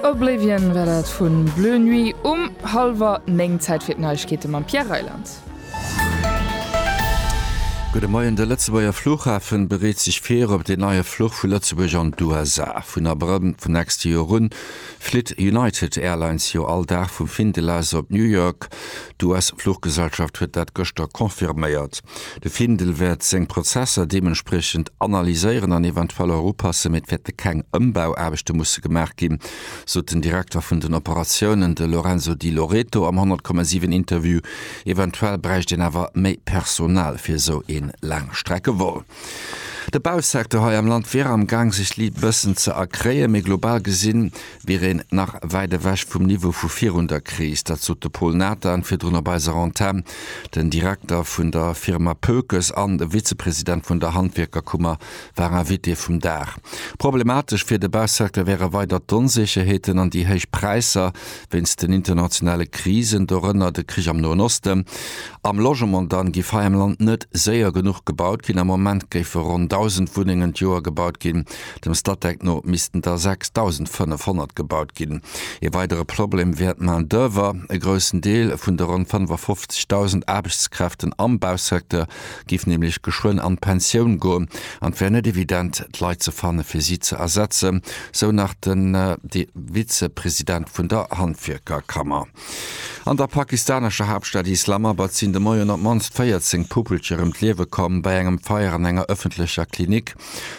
Oblivion war dat vun Bleu Nuit um halwer 9. Zäit fir d'Neiegkeete mam Pierre Reyland. Gudde Moien, De Lëtzebuerger Fluchhafen bereet sech vir op deen neie Fluch vu Lëtzebuerg an d'USA. Vun Abrëll vum nächste Joer un flitt United Airlines jo all Dag vum Findel aus op New York. D'US-Fluchgesellschaft huet dat gëschter confirméiert. De Findel wäert seng Prozesser deementspriechend analyséieren an eventuell erupassen, mee et wäerte keng Ëmbauaarbechte musse gemaach ginn, sot den Direkter vun den Operatiounen, de Lorenzo Di Loreto am 100, 7 Interview. Eventuell bräicht een awer méi Personal fir esou ee Laangstreckevol. De Bausecteur hei am Land wier am Gaang sech li bëssen ze erkréien, mee global gesi wier een nach wäit ewech vum Niveau vu virun der Kris. Dat sot de Paul Nathan virdrun op eiser Antenn. Den Direkter vun der Firma Pökes an de Vizepresident vun der Handwierkerkummer war Invité vum Dag. Problematesch fir de Bausecteur wäre weider d'Onsécherheeten an déi héich Präisser, wéinst den internationale Krisen, dorënner de Krich am Noen Osten, am Logement, dann giff hei am Land net séier genuch gebaut ginn. Am Moment géife ronn 1.000 Wunnengen d'Joer gebaut ginn, dem Statec no missten der 6.500 gebaut ginn. Ee weidere Problem wär d'Main d'oeuvre. E groussen Deel vun de ronn 55.000 Aarbechtskräften am Bausecteur giff nämlech geschwënn an d'Pensioun goen an et wär net evident d'Leit ze fannen fir si ze ersetzen, sou nach de Vizepresident vun der Handwierkerkammer. An der pakistanescher Haaptstad Islamabad sinn de Moien op d'mannst 14 Puppelcher ëm d'Liewe komm bei engem Feier an enger ëffentlecher Klinik.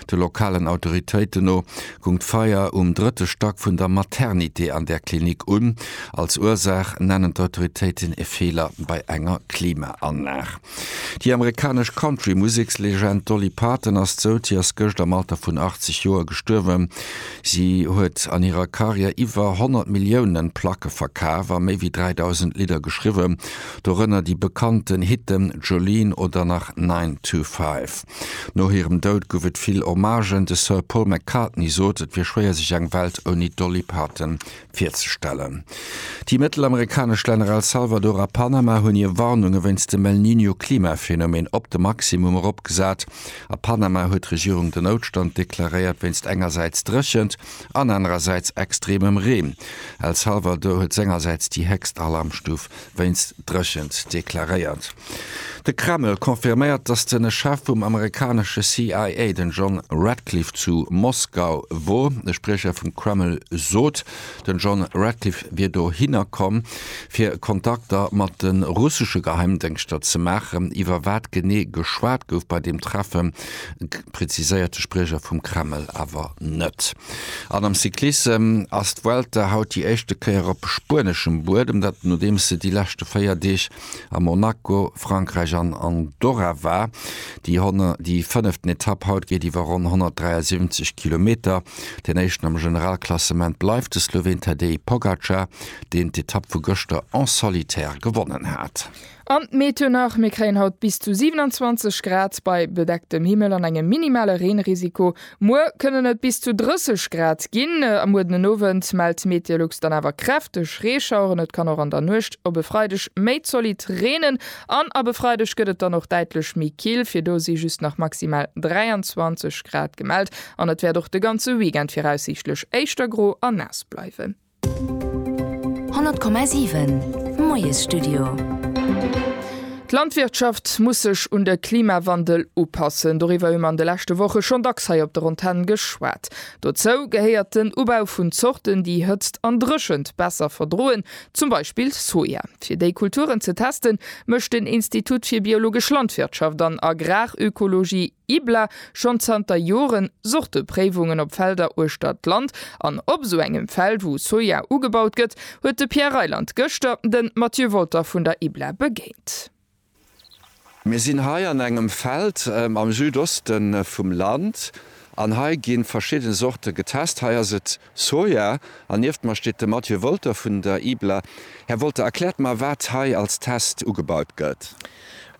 De lokalen Autoritéiten no gung d'Feier um drëtte Stack vun der Maternité an där Klinik un. Als Ursaach nennen d'Autoritéiten e Feeler bei enger Klimaanlag. Déi amerikanesch Country-Musekslegend Dolly Parton ass dout. Si ass gëscht am Alter vun 80 Joer gestuerwen. Si huet an hirer Karriär iwwer 100 Milliounen Placke verkaf a méi wéi 3.000 Lidder geschriwwen, dorënner déi bekannten Hitten Jolene oder nach Nine to Five. No hirem Dout gouf et vill Hommagen. De Sir Paul McCartney sot, et wier schwéier sech eng Welt ouni d'Dolly Parton virzestellen. Déi mëttelamerikanesch Länner El Salvador a Panama hunn hir Warnunge wéinst dem El Niño Klimaphenomen op de Maximum eropgesat. A Panama huet d'Regierung den Noutstand deklaréiert wéinst engersäits Dréchent an anerersäits extremem Reen. El Salvador huet sengersäits déi héchst Alarmstuf wéinst Dréchent deklaréiert. De Kreml confirméiert, datt de Chef vum amerikanesche CIA, den John Ratcliffe, zu Moskau wor. E Spriecher vum Kreml sot, den John Ratcliffe wier dohinner komm, fir Kontakter mat de russesche Geheimdéngschter ze maachen. Iwwer wat genee geschwat gouf bei deem Treffen, präziséiert de Spriecher vum Kreml awer net. An am Cyclissem ass d'Vuelta haut déi éischte Kéier op spueneschem Buedem, dat nodeems se déi leschte 4 Deeg a Monaco, Frankräich an Andorra war. Déi fënneften Etapp haut geet iwwer ronn 173 Kilometer. Deen éischten am Generalklassement bleift de Sloween Tadej Pogacar, deen d'Etapp vu gëschter en solitaire gewonnen hat. An d'Meteo nach, Mir kréien haut bis zu 27 Grad bei bedecktem Himmel an engem minimale Reenrisiko. Muer kënnen et bis zu 30 Grad ginn. A muer den Owend mellt d'Meteolux dann awer kräfteg Reeschaueren. Et kann och an der Nuecht op e Freideg méi zolidd reenen. An ab e Freideg gëtt et dann och däitlech méi kill. Fir do si just nach maximal 23 Grad gemellt. An et wäert och de ganze Weekend viraussiichtlech éischter gro a naass bleiwen. 100,7 Moiesstudio. D'Landwirtschaft muss sech un de Klimawandel upassen. Doriwwer hu mer an de leschte Woche schonn dacks hei op der Antenn geschwat. Dozou gehéiert den Ubau vun Zorten, déi Hëtzt an Dréchent besser verdroen, zum Beispill Soja. Fir déi Kulturen ze testen, mécht den Institut fir biologesch Landwirtschaft an Agrarökologie, IBLA schonn zanter Joren Sortepréiwungen op Felder uechter d'Land an op esou engem Feld, wou Soja ugebaut gëtt, huet de Pierre Reyland gëschter de Mathieu Wolter vun der IBLA begéint. Mir sinn hei an engem Feld am Südoste vum Land an hei gi verschidde Sorte getest. Hei ass et Soja, an nieft mer steet de Matthieu Wolter vun der IBLA. Här Wolter, erkläert mer, wat hei als Test ugebaut gëtt.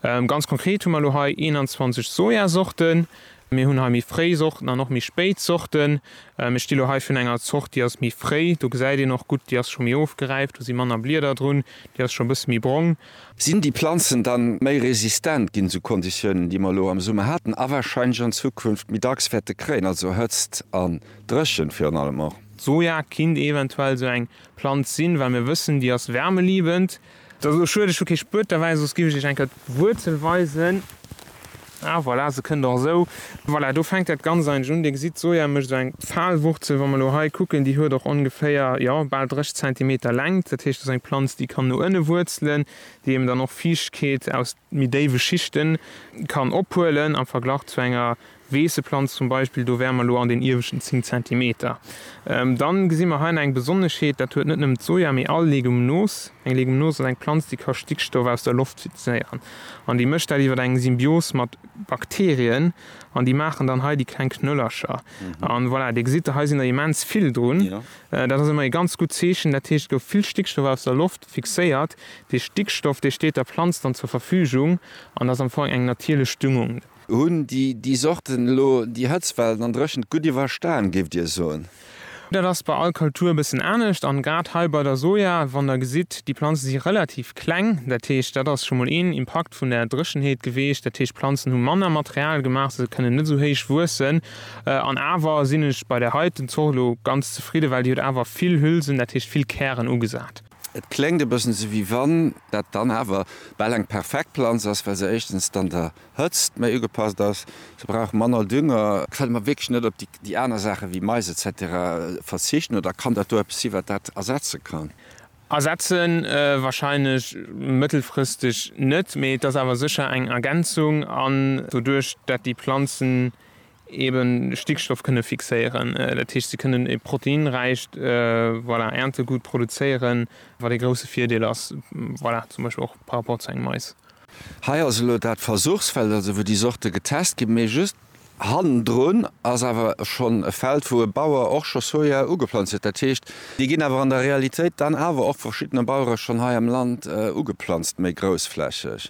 Ganz konkret hu mer elo hei 21 Sojasorten. Mir hunn hei méi fréi Sorten an och méi spéit Sorten. Ech di elo hei vun enger Zort, déi ass méi fréi. Do gesäit een och gutt, déi ass scho méi ofgeräift, do si manner Blieder drun, déi ass scho e bësse méi brong. Sinn déi Planzen dann méi resistent ginn, sou Konditiounen, déi mer elo am Summer haten a warscheinlech an Zukunft méi dacks wäerte kréien, also Hëtzt an. Dréchent virun allem och. D'Soja kinnt eventuell esou eng Planz sinn, well mir wëssen, déi ass wärmeliebend. Et ass elo schued, ech hu kee Spuet derbäi, soss giff ech iech eng Kéier d'Wuerzel weisen. Ah voilà, se kënnt och esou. Voilà, do fänkt dat Ganzt eigentlech un. Dir gesitt, d'Soja mécht esou eng Pfahlwurzel. Wa mer elo hei kucken, déi huet och ongeféier, jo, bal 30 Zentimeter Längt. Dat heescht, dat ass eng Planz, déi kann no ënne wuerzelen, déi eben dann och Fiichtkeet aus méi déiwe Schichten kann ophuelen am Verglach zu enger Weesseplanz zum Beispill, do wäre mer elo an den ieweschten 10 Zentimeter. Dann gesi mer hei nach eng Besonneschheet, dat huet net nëmmen d'Soja, mee all Legumnos. Eng Legumnos ass eng Planz, déi ka Stickstoff aus der Loft fixéieren an déi mécht dat iwwer eng Symbios mat Bakterien an déi maachen dann hei déi kleng Knöllercher. An voilà, Dir gesitt, hei sinn der immens vill drun. Dat ass ëmmer ee ganz gutt Zeechen, dat heescht, et gouf vill Stickstoff aus der Loft fixéiert. Dee Stickstoff, dee steet der Planz dann zur Verfügung an ass am Fong eng natierlech Düngung. Hunn déi Sorten elo déi Hëtztwellen an Dréchent gutt iwwerstan, géift Dir soen? Dat ass bei all Kultur e bëssen anescht. An grad hei bei der Soja, wann Der gesitt, déi Planzen si relativ kleng. Dat heescht, dat ass scho mol een Impakt vun der Dréchenheet geweecht. Dat heescht, d'Planzen hu manner Material gemaach, sou se kënnen net esou héich wuessen. An awer sinn ech bei där heiten Zort elo ganz zefridden, well déi huet awer vill Hülsen, dat heescht vill Kären ugesat. Et kléngt e bëssen esou, wéi wann dat dann awer bal eng perfekt Planz ass, well se éischtens dann der Hëtzt méi ugepasst ass, se brauch manner Dünger. Kënne mer wierklech net op déi aner Saache wéi Mais etc. Verzichten oder kann dat do eppes sinn, wat dat ersetze kann? Ersetze wahrscheinlech mëttelfristeg net, mee et ass awer sécher eng Ergänzung an doduerch dat déi Planzen eben Stickstoff kënne fixéieren, dat heescht si kënnen e proteinräicht, voilà, Äertegut produzéieren, wat ee grousse Virdeel ass, voilà, zum Beispill och par rapport zu engem Mais. Hei ass elo dat Versuchsfeld, also wou déi Sorte getest ginn, mee just hannendrun ass awer schonn e Feld, wou e Bauer och scho Soja ugeplanzt huet. Dat heescht, déi ginn awer an der Realitéit dann awer och vu verschiddene Bauere schonn hei am Land ugeplanzt, méi groussflächeg.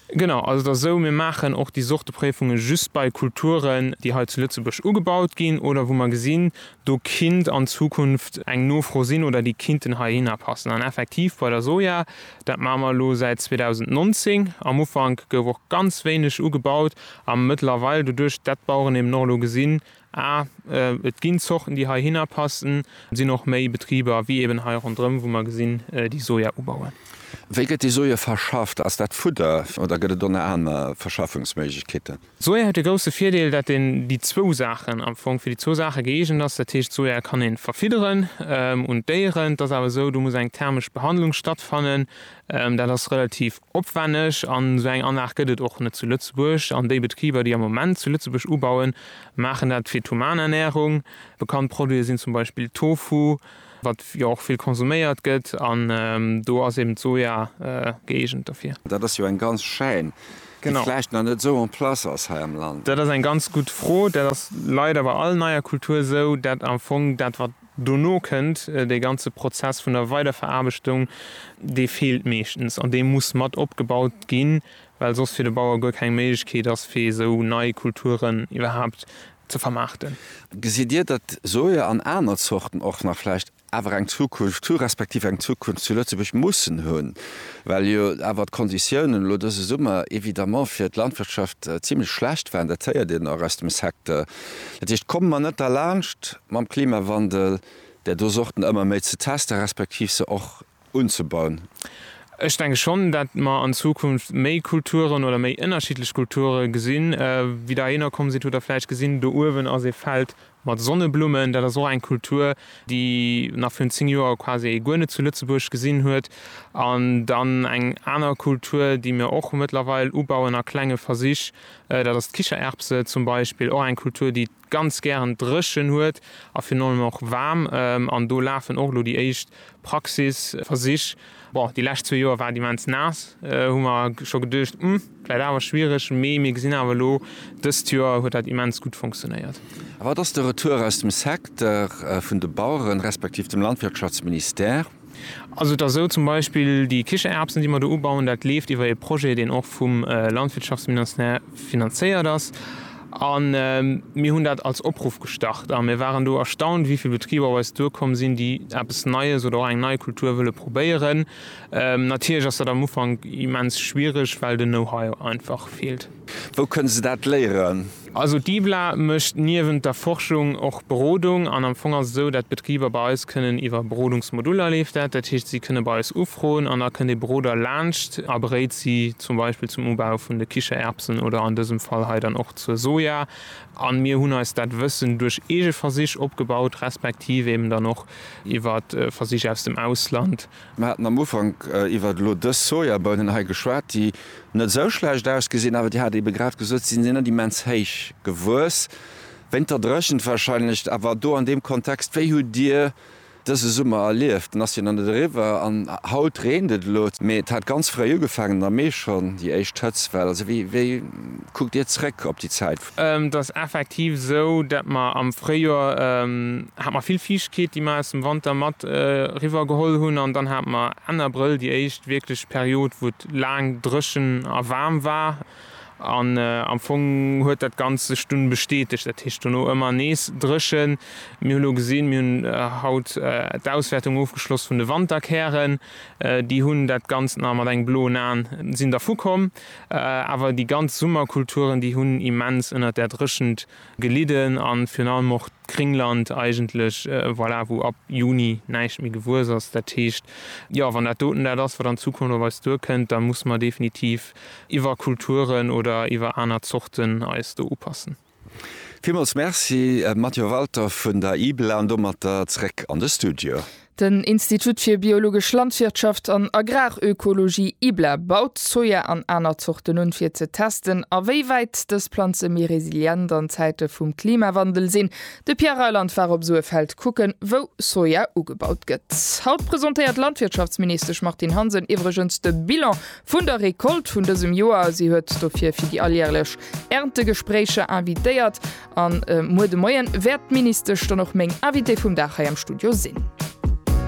Genau, also et ass esou, mir maachen och déi Sorte Préifunge just bei Kulturen, déi hei zu Lëtzebuerg ugebaut ginn oder wou mer gesinn, do kinnt an Zukunft eng Nofro sinn oder déi kinnten heihinner passen. An effektiv bei der Soja, dat maache mer elo säit 2019, am Ufank gouf och ganz wéineg ugebaut a mëttlerweil, doduerch dat d'Baueren eben och elo gesinn, A, Et ginn Zorten, déi heihinner passen. Et sinn och méi Betriber, wéi eben hei ronderëm, wou mer gesinn, déi Soja ubauen. Wéi gëtt déi Soja verschafft? Ass dat Fudder oder gëtt et och nach aner Verschaffungsméiglechkeeten? D'Soja huet de grousse Virdeel, datt een déi zwou Saachen am Fong, fir déi zwou Saache gëeegent ass. Dat heescht, d'Soja kann ee verfidderen un d'Déieren. Et ass awer esou, do muss eng thermesch Behandlung stattfannen. Dat ass relativ opwänneg an esou eng Anlag gëtt et och net zu Lëtzebuerg. An déi Betriber, déi am Moment zu Lëtzebuerg ubauen, maachen dat fir d'human Ernährung. Bekannt Produite sinn zum Beispill Tofu, wat jo och vill konsuméiert gëtt, an do ass eben d'Soja gëeegent derfir. Dat ass jo eng ganz Chaîne, déi vläicht nach net esou en place ass hei am Land. Dat ass eng ganz gutt Fro. Dat ass leider bei all neier Kultur esou, dat am Fong dat, wat Dono kënnt dee ganze Prozess vun der Weiderveraarbechtung, dee feelt meeschtens an dee muss mat opgebaut ginn, well soss fir de Bauer guer keng Méiglechkeet ass, fir esou nei Kulturen iwwerhaapt ze vermaarten. Gesitt Dir, datt Soja an aner Zorten och nach vläicht awer eng Zukunft hu respektiv eng Zukunft zu Lëtzebuerg mussen hunn, well jo awer d'Konditiounen elo dëse Summer évidemment fir d'Landwirtschaft zimlech schlecht waren? Dat héiert een och aus dem Secteur. Dat heescht, komme mer net derlaanscht mam Klimawandel där do Sorten ëmmer méi ze testen, respektiv se och unzebauen. Ech denke schonn, datt mer an Zukunft méi Kulturen oder méi ënnerschiddlech Kulture gesinn. Wéi Der hierno komm sidd, hutt Der vläicht gesinn, do uewen ass ee Feld mat Sonneblummen. Dat ass och eng Kultur, déi nach virun zéng Joer quasi ee guer net zu Lëtzebuerg gesinn huet. An dann eng aner Kultur, déi mir och mëttlerweil ubauen a klenge Versich, Dat ass d'Kichererbse zum Beispill, och eng Kultur, déi et ganz gären dréchen huet a virun allem och waarm. An do lafen och elo déi éischt Praxisversich. Bon, déi lescht zwee Joer war et immens naass, hu mer scho geduecht, Hm, vläit awer schwiereg. Mee mir gesinn awer elo, dëst Joer huet dat immens gutt funktionéiert. A wat ass de Retour aus dem Secteur vun de Baueren, respektiv dem Landwirtschaftsministère? Also et ass esou, zum Beispill déi Kichererbsen, déi mer do ubauen, dat leeft iwwer ee Projet, deen och vum Landwirtschaftsministère finanzéiert ass. A mir hunn dat als Opruff gestart a mir waren do erstaunt, wéi vill Betriber op eis duerkomm sinn, déi eppes Neies oder och eng nei Kultur wëlle probéieren. Natierlech ass dat am Ufank immens schwiereg, well den Know-how einfach feelt. Wou kënne se dat léieren? Also d'IBLA mécht niewent der Forschung och Berodung an am Fong ass et esou, dat d'Betriber bei eis kënnen iwwer Berodungsmoduller, leeft dat, dat heescht si kënne bei eis ufroen an da kënnt ee Beroder laanscht a beréit si zum Beispill zum Ubau vun de Kichererbsen oder an dësem Fall hei dann och zur Soja an mir hunn eis dat Wëssen duerch eege Versich opgebaut, respektiv eeben dann och iwwer Versich aus dem Ausland. Mir haten am Ufank iwwert elo dës Sojabounen hei geschwat, déi net esou schlecht ausgesinn, awer Dir hat eebe grad gesot, si sinn net immens héich gewuess, wéint der Dréchent warscheinlech. Awer do an deem Kontext, wéi hutt Dir dëse Summer erlieft? En ass jo nach net eriwwer an haut reent et elo, mee et hat ganz fréi ugefaangen am Mee schonn déi éischt Hëtztwell. Also wéi kuckt Dir zeréck op déi Zäit, Et ass effektiv esou, dat mer am Fréijoer hat mer vill Fiichtkeet, déi mer aus dem Wanter mat eriwwer geholl hunn. An dann hat mer Enn Abrëll déi éischt wierklech Period, wou et laang dréchen a waarm war. An am Fong huet dat Ganzt sech dunn bestätegt, dat heescht dono ëmmer nees dréchen. Mir hu lo gesinn, mir hunn haut d'Auswäertung ofgeschloss vun de Wanterkären, déi hunn dat Ganzt nach mat engem bloen Aen sinn dervu komm. Awer déi ganz Summerkulturen, déi hunn immens ënnert där Dréchent gelidden a virun allem och d'Kringland eigentlech, voilà, wou ab Juni näischt méi gewuess ass. Dat heescht, jo, wann dat doten dat ass, wat an Zukunft op eis duerkënnt, da musse mer definitiv iwwer Kulturen oder iwwer aner Zorten eis do upassen. Villmools Merci Matthieu Walter vun der IBLA an domatter zréck an de Studio. Den Institut fir biologesch Landwirtschaft an Agrarökologie, IBLA, baut Soja an aner Zorten un, fir ze testen, a wéi wäit dës Planze méi resilient an Zäite vum Klimawandel sinn. De Pierre Reyland war op esou e Feld kucken, wou Soja ugebaut gëtt. Haut presentéiert d'Landwirtschaftsministesch Martine Hansen iwwregens de Bilan Vun der Recolte vun dësem Joer. Si huet dofir fir déi alljärlech Erntegespréicher invitéiert an muer de Moien wäert d'Ministesch dann och meng Invitée vum Dag hei am Studio sinn.